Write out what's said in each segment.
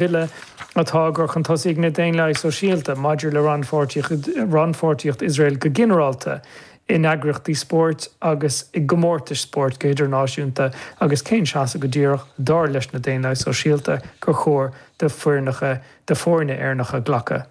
Bille atá á gcur chun tosaigh ag na Daonlathaigh Sóisialta maidir le rannpháirtíocht Iosrael go ginearálta in eagraíochtaí spóirt agus i gcomórtais spóirt go hidirnáisiúnta agus cén seasamh go díreach, dar leis na Daonlathaigh Sóisialta, gur chóir do foirne Éireannacha glacadh.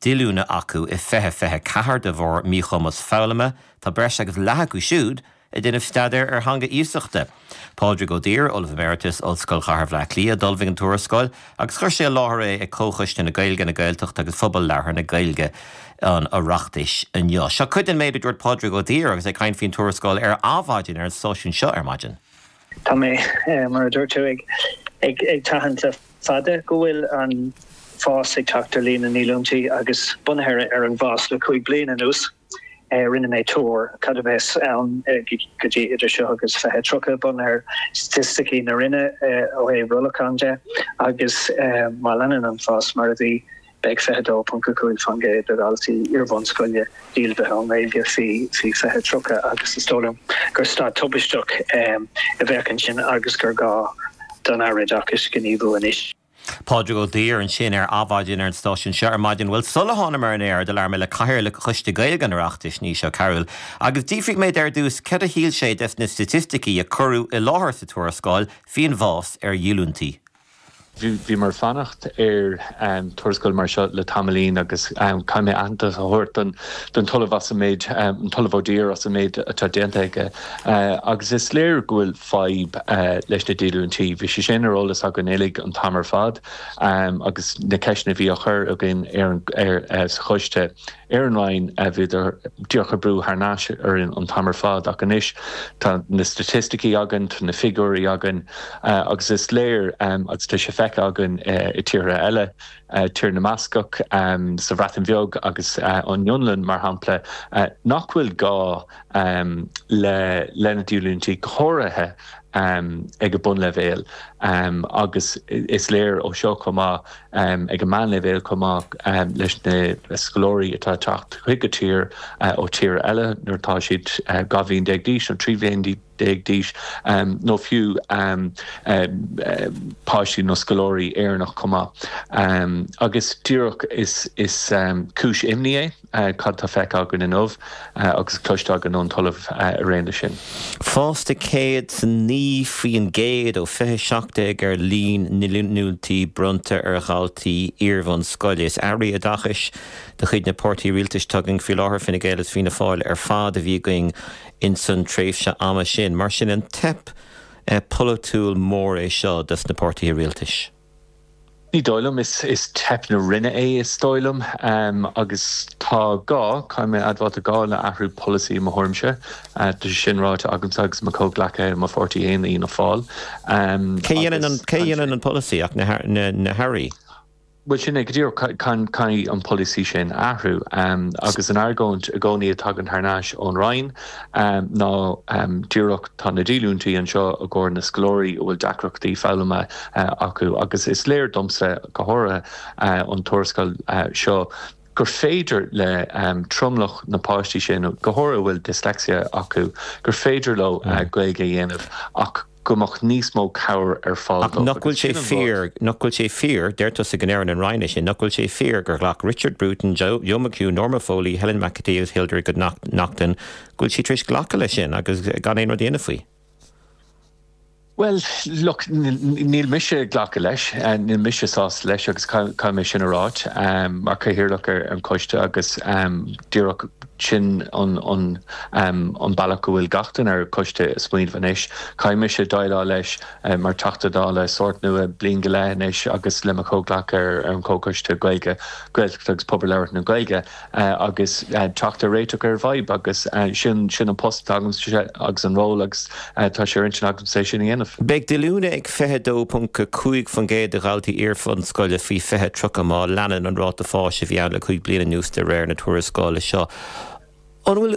díolúine acu i 2024 de bharr míchumas foghlama, tá breis agus leath acu siúd ag déanamh staidéir ar theanga iasachta. Pádraig Ó Duibhir, Ollamh Emeritus, Ollscoil Chathair Bhleá Cliath, d'ullmhaigh an tuarascáil agus chuir sé i láthair é ag Comhchoiste na Gaeilge, na Gaeltachta agus Phobal Labhartha na Gaeilge an Oireachtais inniu. Seo cuid den méid a dúirt Pádraig Ó Duibhir agus é ag caint faoin tuarascáil ar Adhmhaidin ar an stáisiún seo ar maidin. Tá mé, mar a dúirt tú, ag tathant le fada go bhfuil an fás ag teacht ar líon na ndíolúintí agus bunaithe ar an bhfás le cúig bliana anuas rinne mé tuar cad a bheas ann go dtí idir seo agus 2030 bunaithe ar staitisticí na Roinne ó thaobh rollacháin de agus má leanann an fás mar a bhí Beidh 22.5% de dhaltaí iarbhunscoile díolmhaithe ón nGaeilge faoi 2030 agus is dóigh liom gur staid tubaisteach a bheadh ansin agus gur gá don Aire Oideachais gníomhú anois. Pádraig Ó Duibhir ansin ar Adhmhaidin ar an stáisiún seo ar maidin. Bhuel, sula thánamar ar an aer do labhair mé le Cathaoirleach Choiste Gaeilge an Oireachtais, Naoise Ó Cearúil, agus d'fhiafraigh mé de ar dtús céard a shíl sé des na staitisticí a cuireadh i láthair sa tuarascáil faoin bhfás ar dhíolúintí. Bhí mé ag fanacht ar tuarascáil mar seo le tamaillín agus caithfidh mé aitheantas a thabhairt don tOllamh as an méid, an tOllamh Ó Duibhir as an méid atá déanta aige agus is léir go bhfuil fadhb leis na díolúintí. Bhí sé sin ar eolas againn uilig an t-am ar fad agus na ceisteanna a bhí á chur againn sa choiste. Ar an Roinn, bhíodar díreach ag brú thar n-ais orainn an t-am ar fad ach anois tá na staitisticí againn, tá na figiúirí againn agus is léir agus tá sé feicthe againn i tíortha eile, Tír na mBascach, sa Bhreatain Bheag agus an Fhionlainn mar shampla, nach bhfuil gá le na díolúintí, go háirithe ag an mbunleibhéal agus is léir ó seo chomh maith. ag an meánleibhéal chomh maith leis na scoláirí atá ag teacht chuig an tír ó thíortha eile nuair atá siad 12 bhliain d'aois nó 13 bhliain d'aois, nó fiú páistí nó scoláirí Éireannach chomh maith. Agus díreach is cúis imní é. Cad atá feicthe againn inniu agus cloiste againn ón talamh araon leis sin? Fás de 109% ó 2017 ar líon na ndíolúintí bronnta ar dhaltaí iarbhunscoile. Is Airí Oideachais de chuid na páirtithe rialtais atá againn faoi láthair, Fine Gael is Fianna Fáil, ar fad a bhí againn insan tréimhse ama sin. Mar sin, an teip polaitiúil mór é seo dos na páirtithe rialtais? Ní dóigh liom. Is teip na Roinne é is dóigh liom agus tá gá, caithfidh mé a admháil, tá gá le athrú polasaí i mo thuairimse. Tá sé sin ráite agamsa agus mo chomhghleacaithe i mo pháirtí féin, Fianna Fáil, agus Cé a dhéanann an polasaí ach na hAirí? Bhuel, sin é go díreach, caithfidh an polasaí sin athrú agus an argóint i gcónaí a thagann thar nais ón Roinn, ná díreach tá na díolúintí anseo i gcomhair na scoláirí a bhfuil deacrachtaí foghlama acu agus is léir domsa, go háirithe ón tuarascáil seo, gur féidir le tromlach na bpáistí sin, go háirithe a bhfuil dyslexia acu, gur féidir leo Gaeilge a dhéanamh ach. go mbeadh níos mó cabhair ar fáil dóibh agus sin an rud. Ach nach bhfuil sé fíor, nach bhfuil sé fíor, deir tusa go ndearna an Roinn é sin, nach bhfuil sé fíor gur ghlac Richard Bruton, Joe, Joe McHugh, Norma Foley, Helen McEntee agus Hildegarde Naughton, go bhfuil siad tar éis glacadh leis sin agus gan aon rud a dhéanamh faoi? Bhuel, look, níl mise ag glacadh leis, níl mise sásta leis agus caithfidh mé sin a rá mar Chathaoirleach ar an choiste agus díreach, Sin an bealach go bhfuil gach duine ar an gcoiste ag smaoineamh anois. Caithfidh mise déileáil leis mar Teachta Dála sórt nua bliain go leith anois agus le mo chomhghleacaithe ar an gComhchoiste Gaeilge, Gaeltachta agus Pobail Labhartha na Gaeilge agus teacht ar réiteach ar an bhfadhb agus is é sin an post atá agamsa agus an ról. Tá sé ar intinn agamsa é sin a dhéanamh. Beidh díolúine ag 22.5% de dhaltaí iar-bhunscoile faoi 20 30 má leanann an ráta fáis a bhí ann le cúig bliana anuas de réir na tuarascála seo. An bhfuil